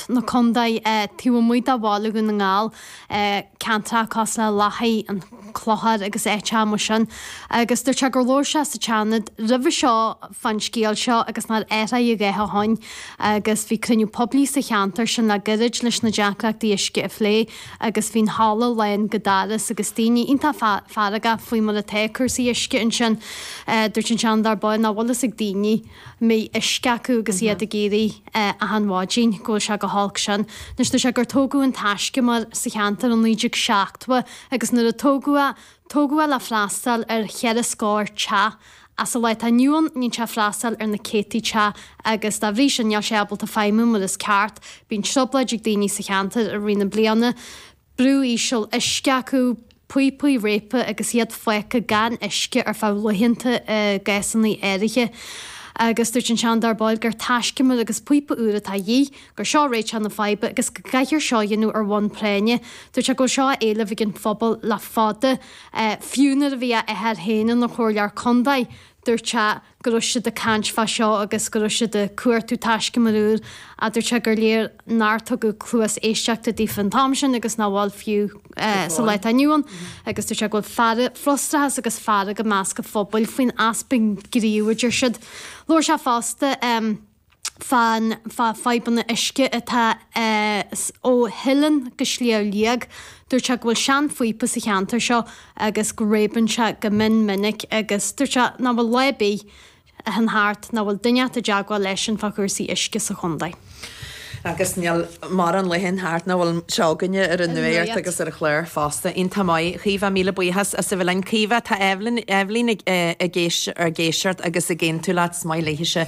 na Condae taobh amuigh de Bhaile Dhún na nGall, ceantracha cosúil le Lathaigh, an Clochar agus áit eile mar sin agus dúirt sé gur labhair sé sa tSeanad roimhe seo fán scéal seo agus nár athraigh a dhath ó shin agus bhí cruinniú poiblí sa cheantar sin le gairid leis na deacrachtaí uisce a phlé agus bhí an halla lán go doras agus daoine iontach feargach faoi mar atá cúrsaí uisce ansin. Dúirt an Seanadóir Boyle nach bhfuil a fhios ag daoine. mbeidh uisce acu agus iad ag éirí achan mhaidin, go bhfuil sé chomh holc sin. Anois dúirt sé gur tógadh an taiscumar sa cheantar i naoi déag seachtó agus nuair a tógadh é, tógadh é le freastáil ar cheithre scór teach ach sa lá atá inniu ann bíonn sé ag freastáil ar na céadtaí teach agus dá bhrí sin níl sé ábalta feidhmiú mar is ceart. Bíonn triobláid ag daoine sa cheantar i rith na bliana. brú íseal uisce acu, píopaí réabtha agus iad fágtha gan uisce ar feadh laethanta i gcásanna áirithe. Agus dúirt an Seanadóir Boyle gur taiscumar agus píopa úr atá de dhíth, gur seo réiteach na faidhbe agus go gcaithfear seo a dhéanamh ar bhonn práinne. Dúirt sé go bhfuil seo á éileamh ag an phobal le fada, fiú nuair a bhí a athair féin ina chomhairleoir contae, dúirt sé. go raibh siad ag caint fá seo agus go raibh siad ag cuartú taiscumar úr, dúirt sé gur léir nár tugadh cluas éisteachta daofa an t-am sin agus nach bhfuil fiú sa lá atá inniu ann. Agus dúirt sé go bhfuil fearg, frustrachas agus fearg i measc an phobail faoin easpa gnímh a deir siad. Labhair sé fosta. fá na fadhbanna uisce atá ó Theileann go Sliabh Liag. Dúirt sé go bhfuil seanphíopa sa cheantar seo agus go réabann sé go mion minic agus dúirt sé nach bhfuil lá ar bith a théann thart nach bhfuil duine inteacht i dteagmháil leisean fá chúrsaí uisce sa chontae. Agus níl mórán laethe a théann thart nach bhfuil seo againne ar an nuacht agus ar an chlár fosta. Iontach maith. Caoimhe, míle buíochas as a bheith linn. Caoimhe, tá Eibhlín ag éisteacht agus ag aontú leat. Is maith léithise.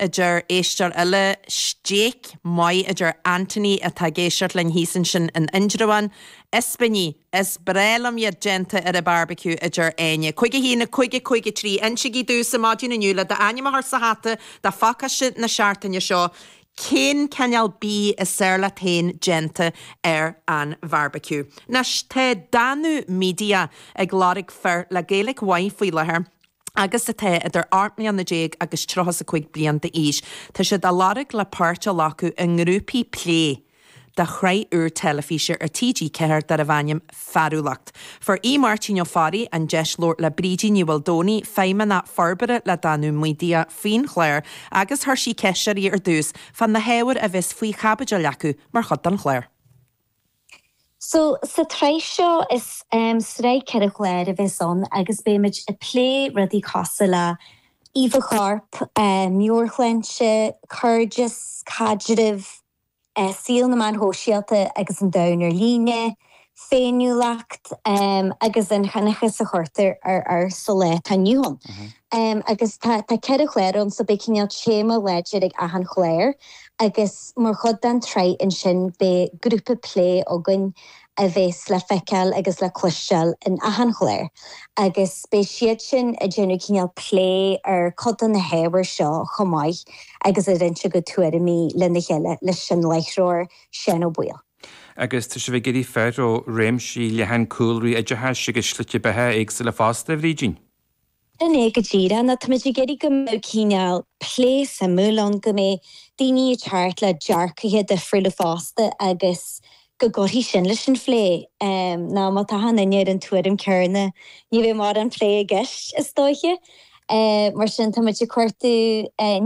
a deir éisteoir eile. Stéig maith, a deir Anthony atá ag éisteacht linn thíos ansin in Indreabhán. Ispíní, is breá liom iad déanta ar an barbecue, a deir Áine. 51, 50, 53, Insígí domhsa maidin inniu le d'ainm a chur sa hata do phacáiste na seachtaine seo cén cineál bídh is fearr leat féin déanta ar an bharbecue. Anois tá Danú Media ag lorg fir le Gaeilic mhaith faoi láthair agus atá idir 18 mbliana agus 35 bliain d'aois. Tá siad á lorg le páirt a ghlacadh i ngrúpaí plé do shraith úr teilifíse ar TG4 darbh ainm 'Fearúlacht'. Fuair Aodh Máirtín Ó Fearraigh an deis labhairt le Brídín Ní Mhaoldomhnaigh, Feidhmeannach Forbartha le Danú Media faoin chlár agus chuir sí ceist uirthi ar dtús fá na hábhair a bheas faoi chaibidil acu mar chuid den chlár. So, sa tsraith seo, is sraith ceithre chlár a bheas ann agus beimid ag plé rudaí cosúil le íomhá choirp, meabhairshláinte, cairdeas, caidrimh, saol na meáin shóisialta agus an domhan ar líne, féiniúlacht, agus na hionchais a chuirtear ar fhear sa lá atá inniu ann. Em agus tá, tá ceithre chlár ann so beidh cineál téama láidir ag achan chlár agus mar chuid den tsraith ansin beidh grúpa plé againn a bheas le feiceáil agus le cloisteáil in achan chlár agus beidh siad sin ag déanamh cineál plé ar cuid de na hábhair seo chomh maith agus ag roinnt a gcuid tuairimí lena chéile leis an láithreoir Seán Ó Baoill. Agus tá sibh ag iarraidh fir ó réimse leathan cúlraí oideachais agus slite beatha éagsúla fosta, a Bhrídín? Sin é go díreach nó táimid ag iarraidh go mbeadh cineál plé suimiúil ann, go mbeidh daoine ag teacht le dearcaithe difriúla fosta agus go gcuirfidh sin leis an phlé nó má tá achan duine ar an tuairim céanna ní bheidh mórán plé i gceist is dóiche. Mar sin táimid ag cuartú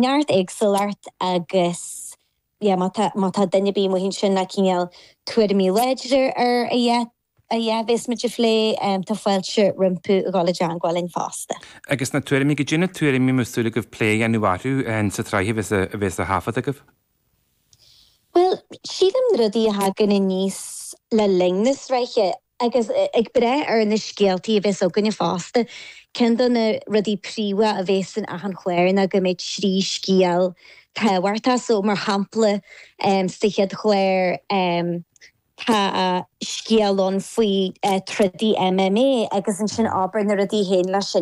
neart éagsúlacht agus yeah má tá duine ar bith amuigh ansin le cineál tuairimí láidre ar a. Cad é a bheas muid a phlé, tá fáilte rompu a dhul i dteangmháil linn fosta. Agus na tuairimí, cad é na tuairimí a bhfuil súil agaibh plé a dhéanamh orthu sa tsraith a bheas á thaifead agaibh? Bhuel, sílim na rudaí a thagann aníos le linn na sraithe, agus ag brath ar na scéaltaí a bheas againne fosta, ceann de na rudaí príomha a bheas in achan chlár ná go mbeidh trí scéal tábhachtach, so mar shampla sa chéad chlár, Tá scéal ann faoi trodaí MMA agus ansin abair na rudaí a théann leis sin.